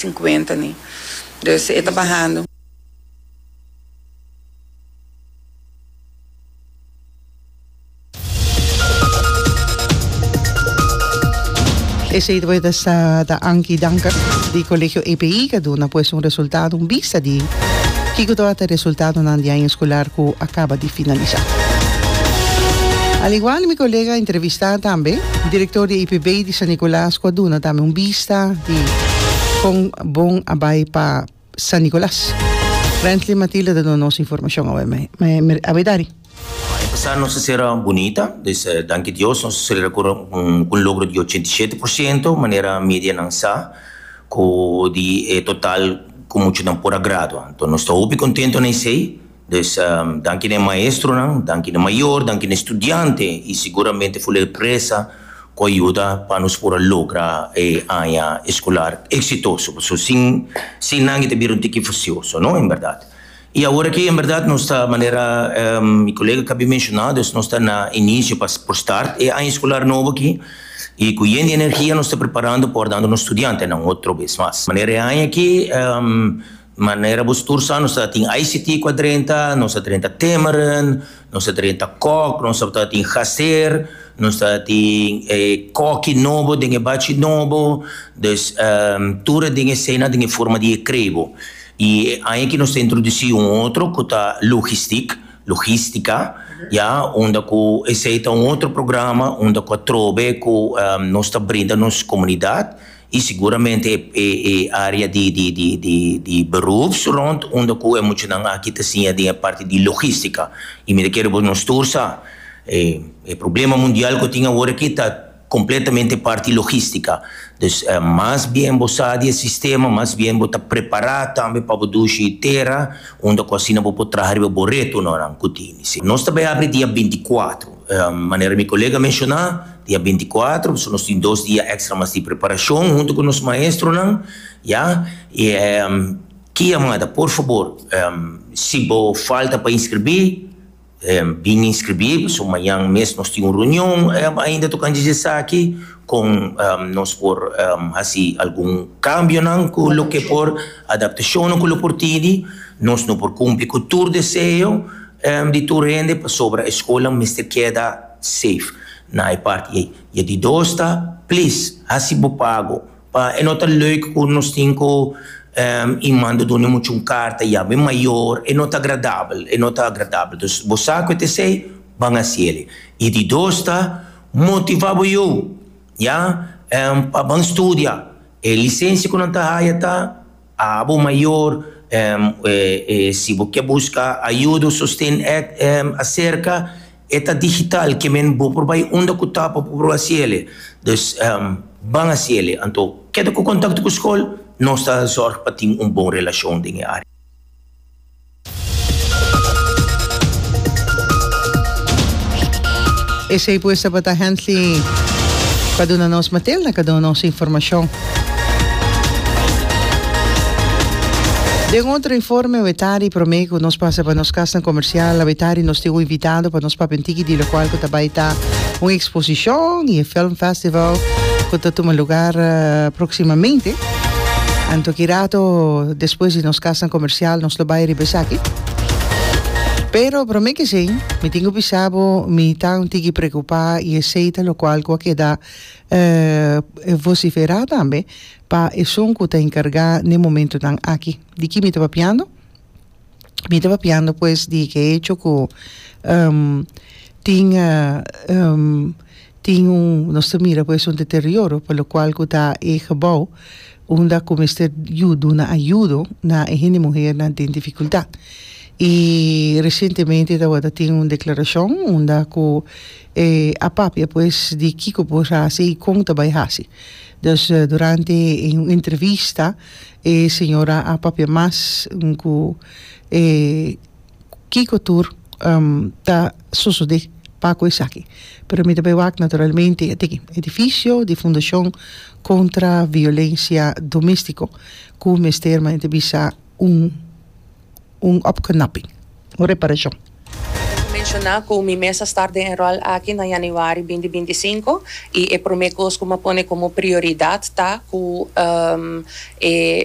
cincuenta ni. Dus e ta bahando. Esey pues ta sa ta Ankie Duncan di Colegio EPI cu a duna pues un resultado un bista di kico tabata ta e resultadonan di año escolar cu a caba di finalisa. Al igual di mi colega entrevista tambe Director di EPB di San Nicolas cu a duna tambe un bista. Festa di kon bon a bai pa San Nicolas. Frently Matilde ta duna nos informacion awe me awe dari. E pasado nos a cera bunita, dus danki Dios nos a celebra cu un logro di ochenta y shete por ciento, manera media nan sa, cu di e total cu muchunan por a gradua. Nos ta hopi contento na esey. Pues, danki na e maestronan, danki na mayor, danki na e studiante i seguramente fula e presa ku a yuda pa nos por a logra e aña escolar exitoso, pasobra sin sin nan e ta bira un tiki fusioso, no? En berdad. I awor aki en berdad nos ta manera mi colega kabi mencionado es nos ta na inicio pa por start e aña escolar nobo aki i ku yen di energia nos ta preparando por dando nos studiantenan otro bes mas. Manera e aña aki Manera bo stuur sa, nos ta tin ICT ku a drenta, nos ta drenta Tamarin, nos ta drenta Kok, nos ta tin Gazeer, nos ta tin e Koki nobo den e bachi nobo, dus tur e ding esei nan den e forma di e krebo. I e aña aki nos ta introdusí un otro ku ta Logistik, Logística, ya, unda ku esei ta un otro programa unda ku atrobe ku nos ta brinda nos komunidat. y seguramente e e area di di di di di beroeps rond unda cu e muchanan aki ta siña den e parti di logistica y mi ta kere bo nos tur sa e e problema mundial cu tin awor aki ta completamente e parti logistica dus mas bien bo sa di e sistema mas bien bo ta prepara tambe pa bo dushi tera unda cu asina bo por traha riba bo retonan cu tin nos ta bay abri dia binti cuatro. Manera mi kolega menshoná, dia binti kuater, pasobra nos tin dos dia èkstra mas di preparashon huntu ku nos maestronan, ya. I ki a manda, por fabor, si bo falta pa inskribí, bin inskribí, pasobra mañan mes nos tin un reunion ainda tokante dje esaki, kon nos por hasi algun kambionan ku loke por, adaptashonnan ku lo por tindi. Nos no por kumpli ku tur deseo. Di tur hende pasobra e skolnan mester keda safe na e parti ei. I e di dos ta, plis hasi bo pago pa e no ta leuk ku nos tin ku i manda done muchu un karta ya bo e mayor e no ta agradabel e no ta agradabel dus bo sa ku e ta esei ban hasi el ei. I di dos ta motiva bo you ya pa ban studia e lisensia ku nan ta haya ta. Abo mayor, si bo ke buska ayuda o sosten ed aserka e ta digital ke men bo por bai unda ku ta pa bo por hasi ele. Dus ban hasi ele. Anto keda ku kontakto ku skol, nos ta zorg pa tin un bon relashon den e área. Esey pues tabata hent'li pa duna nos matel na cada un nos informacion. Den otro informe wetari prome cu nos pasa pa nos casnan comercial a wetari nos tin un invitado pa nos papia un tiki di locual cu ta bay ta un exposicion y e film festival cu ta tuma lugar proximamente. Anto ki rato despues di nos kasnan komersial nos lo bai riba esaki. Pero promé kesei mi tin ku bisa bo mi ta un tiki preokupá i esei ta lokual ku a keda vosiferá tambe pa esun ku ta enkargá n'e momentunan aki. Di ki mi ta papiando? mi ta papiando pues di ke hecho ku tin tin un nos ta mira pues un deterioro pa lo kual ku ta e gebou unda ku mester yu duna ayudo na e hende muhernan den difikultat i resientemente tabata tin un deklarashon unda ku a papia pues di kiko por hasi i kon ta bai hasi dus durante un entrevista E señora a papia mas cu e kico tur ta sosode pa cu esaki. Pero mi ta bay wak naturalmente ate ki edificio di Fundacion Contra Violencia Domestico cu mester manera ta bisa un. un opknapping, un reparashon. Lo cu menciona cu mi mes a start den e rol aki na januari binti binti sinku y e prome cos cu mi a pone como prioridad ta cu e